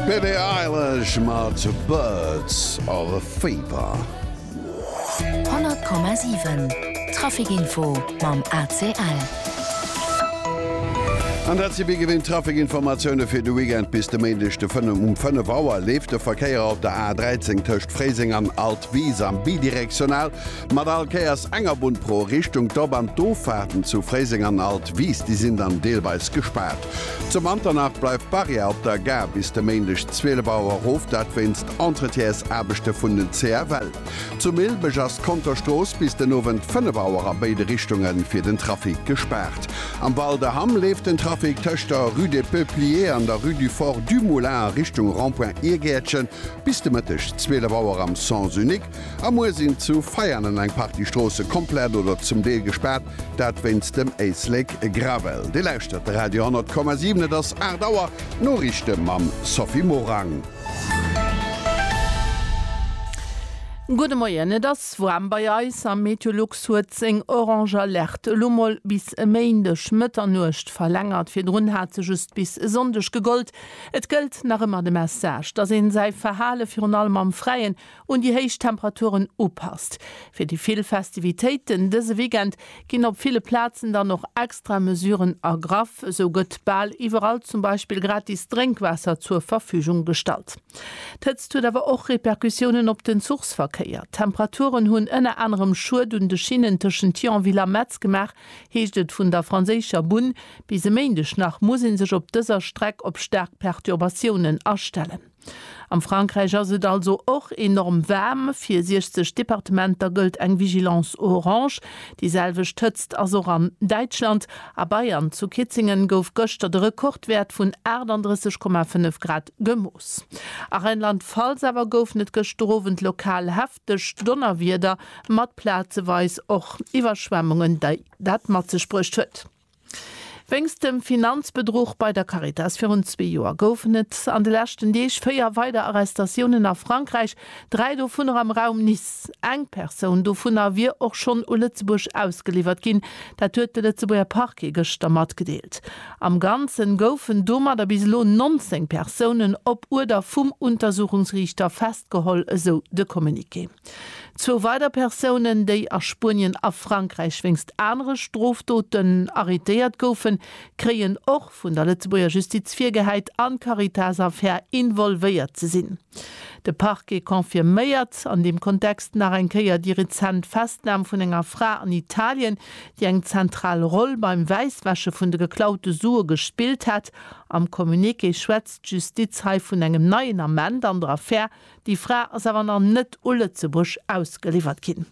D'Billie Eilish mat Birds of a Feather. 100,7 Trafikinfo mam ACL. An dat si wéi gewinnt d'Trafikinformatioune fir de Weekend. Bis de Méindeg de 5 um 5 Auer leeft de Verkéier op der A13 tëscht Fréiseng an Altwis am Bidirektional. Mat all Kéiers enger Bunn pro Richtung. D'Op an d'Offaarten zu Fréiseng an Alt Wiis, déi sinn dann deelweis gespaart. Zu Manternach bleift d'Barrière op der Gare bis de Méindeg 12 Auer erof, dat wéinst Entretiensaarbechte vun den CFL. Zu Milbeg ass d'Konterstrooss bis den Owend 5 Auer a béide Richtunge fir den Trafic gespaart. Am Val de Hamm leeft den Trafic tëscht der Rue des Peupliers an der Rue du Fort Dumoulin a Richtung Rond-point Irgäertchen bis de Mëtteg 12 Auer am Sens unique. A muer sinn zu Veianen eng Partie Stroosse komplett oder zum Deel gespaart, dat wéinst dem Éislek Gravel. Dir lauschtert de Radio 10,7, et ass 8 Auer. D'Noriichte mam Sophie Morang. Gudde Moien, et ass waarm bei eis a Meteolux huet seng orange Alerte elo mol bis e Méindeg Mëtternuecht verlängert. Virdrun hat se just bis e Sonndeg gegollt. Et gëllt nach ëmmer de Message, dass een säi Verhale virun allem am Fräien un déi héich Temperaturen upasst. Fir déi vill Festivitéiten dëse Weekend ginn op ville Plazen dann och extra Mesuren ergraff. Esou gëtt bal iwwerall zum Beispill gratis Drénkwaasser zur Verfügung gestallt. D'Hëtzt huet awer och Repercussiounen op den Zuchsverkéier. D'Temperaturen hunn ënner anerem Schued un de Schinnen tëschent Thionville a Metz gemaach, heescht et vun der franséischer Bunn. Bis e Méindeg nach muss ee sech op dëser Streck op staark Perturbatiounen astellen. Am Frankräich ass et also och enorm waarm. Fir 60 Departementer gëllt eng Vigilance orange. Déi selwecht Hëtzt ass och an Däitschland. A Bayern, zu Kitzingen, gouf gëschter de Rekordwäert vun 38,5 Grad gemooss. A Rheinland-Pfalz awer goufen et gëschterowend lokal hefteg Donnerwieder mat plazeweis och Iwwerschwemmungen, déi dat mat sech bruecht huet. Wéinst dem Finanzbedruch bei der Caritas virun zwee Joer goufen et an de leschten Deeg véier weider Arrestatiounen a Frankräich, dräi dovunner am Raum Nice. Eng Persoun dovunner wier och schonn u Lëtzebuerg ausgeliwwert ginn, dat huet de Lëtzebuerger Parquet gëschter matgedeelt. Am Ganzen goufen domadder bis elo 19 Persounen op Uerder vum Untersuchungsriichter festgeholl, esou de Communiqué. Zwou weider Persounen, déi a Spuenien a Frankräich wéinst anere Strofdoten arrétéiert goufen, kréien och vun der Lëtzebuerger Justiz virgehäit, an d'Caritas-Affär involvéiert ze sinn. De Parquet confirméiert an deem Kontext nach eng Kéier déi rezent Festnam vun enger Fra an Italien, déi eng zentral Roll beim Wäisswäsche vun de geklaute Sue gespillt hätt. Am Communiqué schwätzt d'Justiz hei vun engem neien Ament an der Affär Déi Fra ass awer nach net u Lëtzebuerg ausgeliwwert ginn.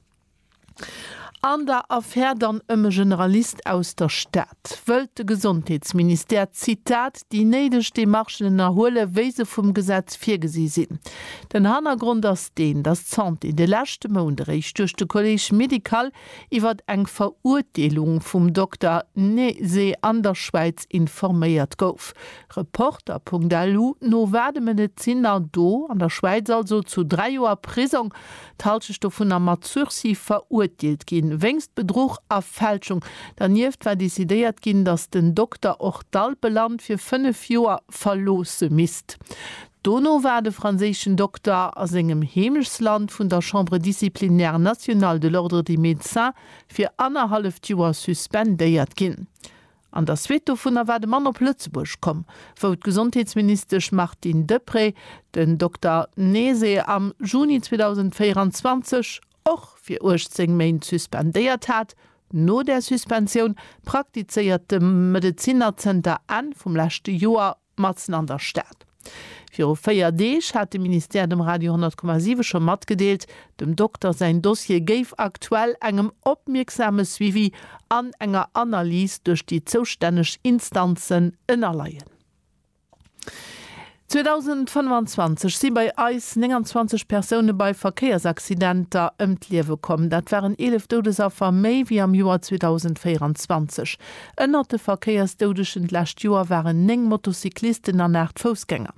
An der Affär dann ëm e Generalist aus der Stad, wëllt de Gesondheetsministère, Zitat, déi néideg Demarchen ënnerhuelen, wéi se vum Gesetz virgesi sinn. Den Hannergrond ass deen, datt d'Santé de leschte Mount eréischt duerch de Collège médical iwwert eng Verurteelung vum Dokter Nese an der Schwäiz informéiert gouf. Reporter.lu, No waardem en et sinn der do an der Schwäiz also zu 3 Joer Prisong, d'Halschecht dovunner mat Sursis, verurteelt ginn, wéinst Bedruch a Fälschung. Dernieft war decidéiert ginn, datt den Dokter och d'Alpeland fir 5 Joer verloosse misst. Dono war de franséischen Dokter a sengem Heemechtsland vun der Chambre disciplinaire nationale de l'Ordre des médecins fir annerhalleft Joer suspendéiert ginn. An der Suite dovunner war de Mann op Lëtzebuerg komm, wou d'Gesondheetsministesch Martine Deprez den Dokter Nese am Juni 2024 och fir 18 Méint suspendéiert hat. No där Suspensioun praktizéiert de Medezinnerzënter Enn vum leschte Joer matzen an der Stad. Viru 4 Deeg hat de Ministère dem Radio 10,7 scho matgedeelt, dem Dokter säin Dossier géif aktuell engem opmierksame Suivi an enger Analys duerch déi zoustänneg Instanzen ënnerleien. 2025 si bei eis 29 Persoune bei Verkéiersaccidenter ëm d'Liewe komm. Dat waren 11 Doudesaffer méi wéi am Joer 2024. Ënnert de Verkéiersdoudegen d'lescht Joer waren 9 Motocyclisten an 8 Foussgänger.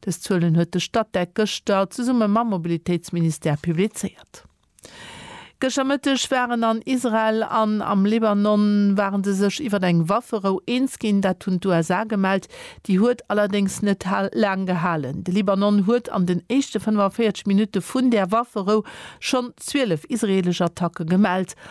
Dës Zuelen huet de Statec gëschter zesumme mam Mobilitéitsministère publizéiert. Gëschter Mëtteg waren an Israel an am Libanon ware se sech iwwer eng Wafferou eens ginn. Dat hunn d'USA gemellt. Déi huet allerdéngs net laang gehalen. De Libanon huet an den éischte 45 Minutte vun där Wafferou schonn 12 israeelesch Attacke gemellt.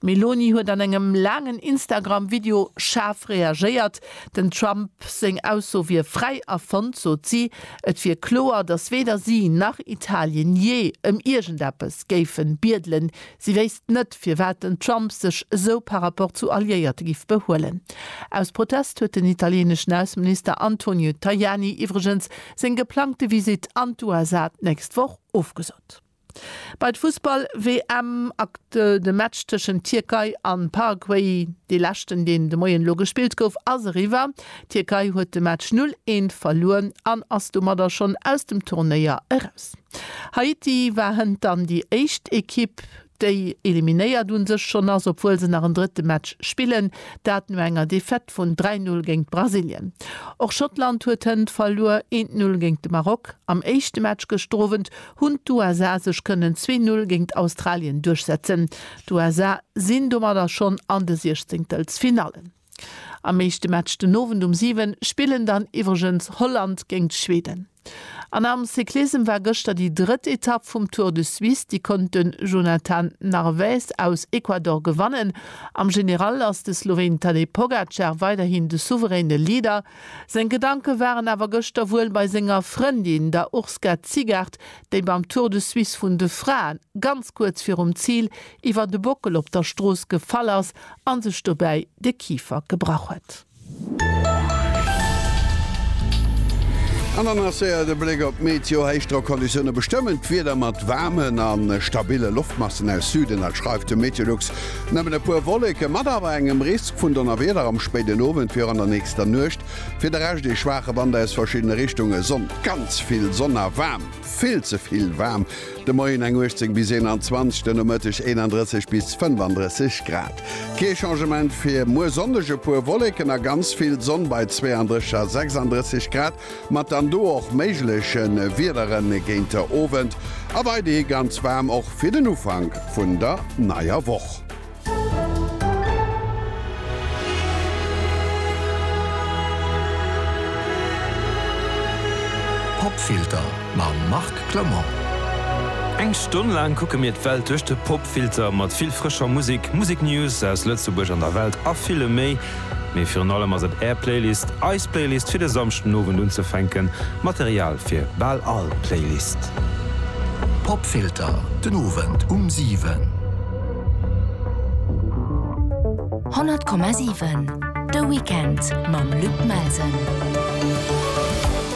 D'Meloni huet an engem laangen Instagram-Video schaarf reagéiert. Den Trump seng Ausso wier fräi erfonnt, sot si. Et wier kloer, datt weder si nach Italien jee ëm iergendeppes géife biedelen. Si wéisst net, firwat den Trump sech esou par rapport zu Alliéierte giff behuelen. Aus Protest huet den italieneschen Ausseminister Antonio Tajani iwwregens seng geplangte Visitt an d'USA d'nächst Woch ofgesot. Bei d'Fussball-WM akt de Match tëschent Tierkei an Paraguay, dee leschten deen de Moien elo gespillt gouf, ass eriwwer. Tierkei huet de Match 0, 1 verluer an ass domadder schonn aus dem Turnéier eraus. Haiti war hënt dann déi éischt Ekipp déi eliminéiert un sech schonn ass, obwuel se nach en drëtte Match spillen, dat no enger Defaite vun 3, 0 géint Brasilien. Och Schottland huet hënt verluer, 1, 0 géint de Maroc. Am éischte Match gëschter Owend hunn d'USA sech kënnen zwee Null géingt Australien duerchsetzen. D'USA sinn domadder schonn an de Siechzéngtelsfinallen. Am meeschte Match den Owend um 7 spillen dann iwwregens Holland géingt Schweden. An am Cyclissem war gëschter déi drëtt Etapp vum Tour de Suisse, déi konnt de Jonathan Narvaez aus Ecuador gewannen. Am General ass de Sloween Tadej Pogacar weiderhin de souveräne Leader. Seng Gedanke waren awer gëschter wuel bei senger Frëndin, der Urska Zigaart, déi beim Tour de Suisse vun de Fraen, ganz kuerz virum Zil, iwwer de Bockel op der Strooss gefall ass a sech dobäi de Kifer gebrach huet. An dann ass séier de Bléck op d'Meteo. Héichdrockonditioune bestëmmen d'Wieder mat waarmen a stabille Loftmassen aus Süden. Dat schreift de Meteolux. Nëmmen e puer Wolleke mat awer engem Risk vun Donnerwieder am spéiden Owend fir an der nächster Nuecht. Fir de Rescht ee schwaache Wand aus verschiddene Richtunge. Sonn, ganz vill Sonn a waarm, vill ze vill waarm. De Moien eng 18 bis 21, de Nomëtteg 31 bis 35 Grad. Kee Changement fir muer Sonndeg, e puer Wolleken a ganz vill Sonn bei 32 a 36 Grad. Mat dann do och méigleche Wiedere géinter Owend a weiderhi ganz waarm och fir den Ufank vun der neier Woch. Popfilter mam Marc Clement. Eng Stonn laang kucke mir d'Welt duerch de Popfilter, mat vill frëscher Musek, Museknews aus Lëtzebuerg an der Welt a villem méi. Mee virun allem ass et Är Playlist, eis Playlist fir de Samschdenowend unzefänken, Material fir bal all Playlist. Popfilter, den Owend um 7. 100,7 De Weekend mam Luc Melsen.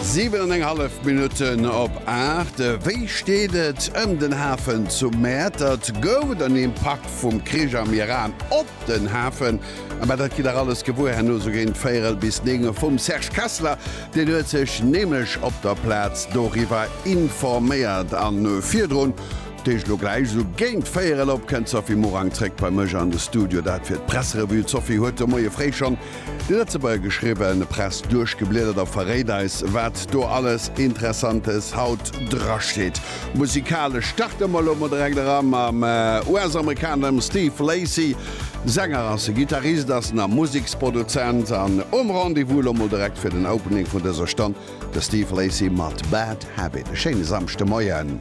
7 an eng hallef Minutten op 8. Wéi steet et ëm den Hafen zu Mäertert? Gouf et en Impakt vum Krich am Iran op den Hafen? Mä dat gitt der alles gewuer herno sou géint véierel bis néng Auer vum Serge Kessler. Deen huet sech nämlech op der Plaz doriwwer informéiert. A virdrun, dat heescht elo gläich sou géint véierel op, kënnt d'Sophie Morang zréck bei mech an de Studio. Dat fir d'Presserevue. D'Sophie huet de Moie fréi schonn déi Lëtzebuerger geschriwwen Press duerchgebliedert a verréit eis, wat do alles Interessantes haut drasteet. Musikalesch starte mer elo mol direkt era mam US-Amerikaner, dem Steve Lacy. Sänger ass e Gittarist, ass en a Museksproduzent an um Rendez-vous. Elo mol direkt fir den Opening vun dëser Stonn de Steve Lacy mat Bad Habit. E schéine Samschdemoien.